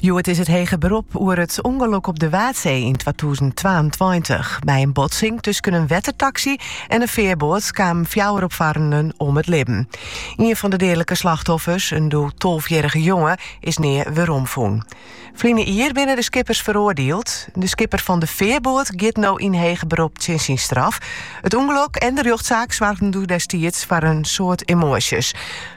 Hjoed is it hege berop oer it ûngelok op de Waadsee yn twatûzen twaentweintich. By in botsing tusken in wettertaksy en in fearboat kamen fjouwer opfarrenen om it libben. Ien fan de deadlike slachtoffers, in doe tolfjierrige jonge, is nea weromfûn. Ferline jier binne de skippers feroardield. De skipper fan de fearboat giet no yn hege berop tsjin syn straf. It ûngelok en de rjochtsaak soargen doe destiids foar in soad emoasjes.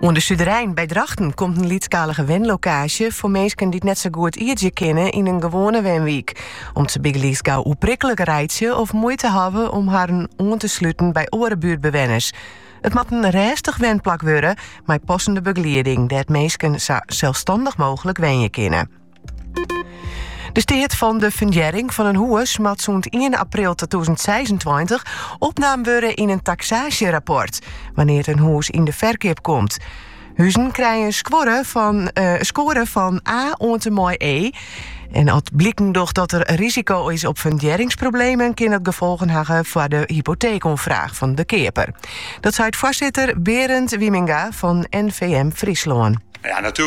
Oan de Suderein by Drachten komt in lytsskalige wenlokaasje foar minsken dy't net sa goed ierdzje kinne yn in gewoane wenwyk. Om't se bygelyks gau oerprikkele reitsje of muoite hawwe om harren oan te sluten by oare buertbewenners. It moat in rêstich wenplak wurde, mei passende begelieding, dêr't minsken sa selsstannich mooglik wenje kinne. De steat fan de fundearring fan in hûs moat sûnt 1 april 2026 opnaam wurde yn in taksaasjerapport wannear't in hûs yn de ferkeap komt. Huzen krije in score fan, eh, score fan A oant en mei E. En as bliken docht dat der risiko is op fundearringsproblemen, kin dat gefolgen hawwe foar de hypoteekoanfraach fan de keaper. Dat seit foarsitter Berend Wieminga fan NVM Fryslân. Ja,